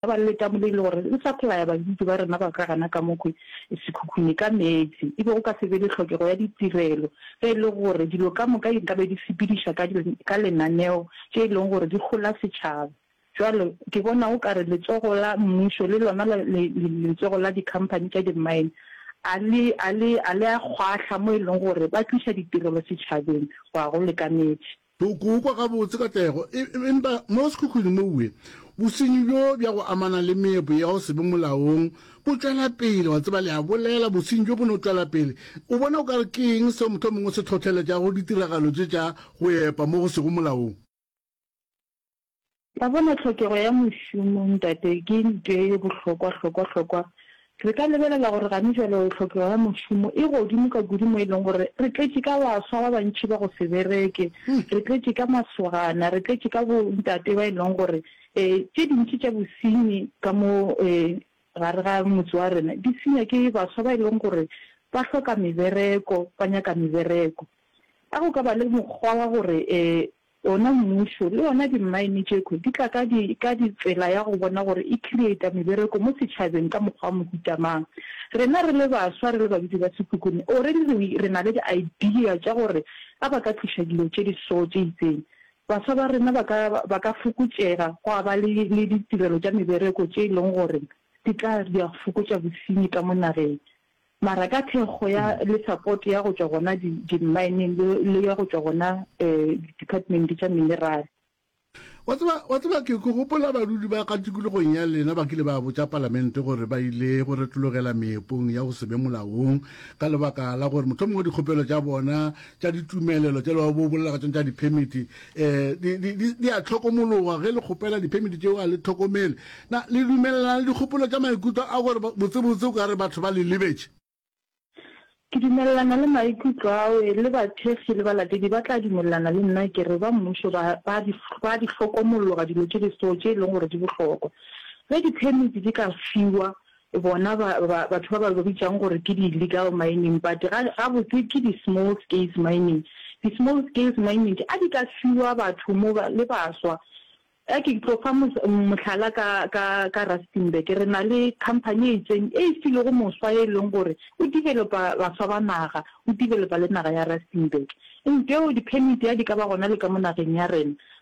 Ba letamole e le gore le sa phela ya badudi ba rena ba ka gana ka mokgwe sekhukhune ka meetse e be go ka se be le tlhokego ya ditirelo ge e le gore dilo ka moka di nkabe di sepediša ka ka lenaneo tše e leng gore di hola setšhaba. Bjale ke bona o ka re letsogo la mmušo le lona la le letsogo la dikhamphani tša di-mine a le a le a le a kgwahla mo e leng gore ba tliša ditirelo setšhabeng go a go lekametše. Toko o kwa gabotse katlego, empa mo sekhukhwing mowe, bosenyi bjo bja go amana le meepo ya go se be molaong bo tšwela pele. Wa tseba, le a bolela, bosenyi bjo bo no tšwela pele. O bona o ka re ke eng seo mohlomongwe se hlohleletšago ditiragalo tše tša go epa mo go sego molaong? Wa bona, tlhokego ya mošomo, ntate, ke ntwee ye bohlokwa, hlokwa, hlokwa. Re ka lebelela gore gane jwale tlhokego ya mošomo e godimo ka kudu mo e leng gore re tletše ka baswa ba bantši ba go se bereke, re tletše ka masogana, re tletše ka bo ntate ba e leng gore e, tše dintši tša bosenyi ka mo e, gare ga motse wa rena di senywa ke baswa ba e leng gore ba hloka mebereko, ba nyaka mebereko. A go ka ba le mokgwa wa gore e, Wona mmušo le yona dimmaene tšekhwi di tla ka di ka di tsela ya go bona gore e creata mebereko mo setšhabeng ka mokgwa wa mohuta mang. Rena re le baswa re le badudi ba Sekhukhune already re re na le di idea tša gore a ba ka tliša dilo tše di so tše itseng. Baswa ba rena ba ka ba ka fokotšega gwa ba le le ditirelo tša mebereko tše e leng gore di tla di a fokotša bosenyi ka mo nageng. Mara ka thekgo ya le support ya go tšwa gona di di mining le le ya go tšwa gona eh di department tša mineral. Wa tseba, wa tseba ke, ke gopola badudi ba ka tikologong ya lena ba kile ba botša Palamente gore ba ile go retologela meepong ya go se be molaong ka lebaka la gore mohlomongwe dikgopelo tša bona tša ditumelelo tša le ba bobolela ka tšona tša di-permit di, di, di, di a tlhokomologa ge le kgopela diphemiti tšeo a le tlhokomele na le dumelelana le dikgopolo tša maikutlo a gore botsebotse o ka re batho ba le lebetše ke dumelelana le maikutlo ao le bathekgi le balatedi ba tla dumelelana le nna ke re ba mmušo ba ba di ba di hlokomologa dilo tše di so tše e leng gore di bohlokwa ge diphemiti di ka fiwa Bona ba, ba, batho ba ba bitšang gore ke di-illegal mining, but ga, gabotse ke di-small scales mining. Di-small scales mining a di ka fiwa batho mo ba, le baswa. A ke tlo fa mos, mohlala ka, ka, ka Rustenburg. Re na le company e itseng e e filego moswa e leng gore o developa baswa ba naga, o developa le naga ya Rustenburg. Ntho eo di-permit a di ka ba gona le ka mo nageng ya rena.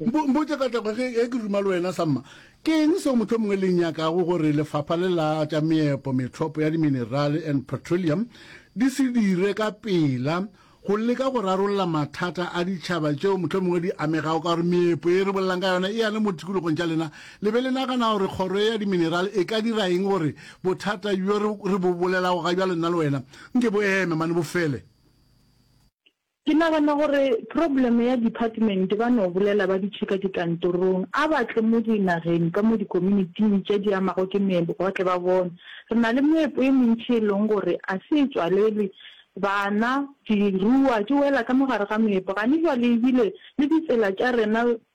Mpo, mpotše ka tlego ge, ge ke ruma le wena, Samma. Ke eng seo mohlomongwe le nyakago gore lefapha le la tša meepo, metlhopo ya diminerale and petroleum di se dire ka pela go leka go rarolla mathata a ditšhaba tšeo mohlomongwe di amegago ka gore meepo ye re bolelang ka yona e ya le mo tikologong tša lena? Le be le nagana gore kgoro ya diminerale e ka dira eng gore bothata bjo re, re bo bolelago ga bjalo nna le wena nke bo eme mane, bo fele? Ke nagana gore problem ya department ba no bolela ba dutše ka dikantorong a ba tle mo di nageng ka mo di communityng tše di amago ke meepo ba tle ba bone. Re na le meepo e mentši e leng gore a se e tswalelwe bana di ruwa di wela ka mo gare ga meepo gane jwale ebile le ditsela tša rena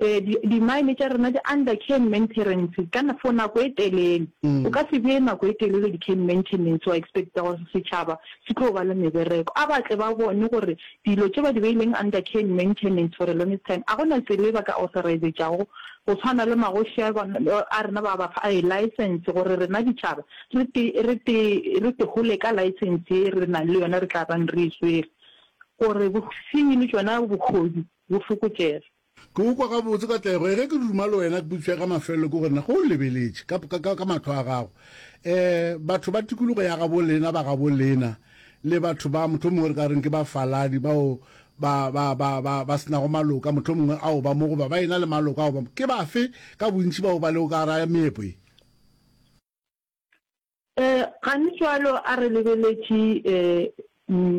Ee, di, di-mine tša rena di under care and maintenance ka, for nako e telele. O ka se bee nako e telele di-care and maintenance wa expecta gore setšhaba se tlo ba le mebereko. A ba tle ba bone gore dilo tše ba di beileng under care and maintenance for a longest time ga go na tsela e ba ka authorizetšago go swana le magoši a, a rena ba ba fa license gore rena ditšhaba re te, re te, re te hole ka license ye re nang le yona re tla bang re e swere gore bosenyi le tšona bohodu bo fokotšege. Ke go kwa gabotse ka tlego. Ee, ge ke duma le wena, putswa ya ga mafelelo ke gore, na ge o lebeletše ka, ka, ka, ka mahlo a gago, ee, batho ba tikologo ya gabo lena, ba gabo lena, le batho ba, mohlomongwe re ka reng ke bafaladi, bao ba, ba, ba, ba, ba se nago maloka, mohlomongwe ao ba mo, goba ba ena le maloka ao ba mo, ke bafe ka bontši bao ba lego ka gare ga meepo ye? Ee, gane cwalo, a re lebeletše, ee, um.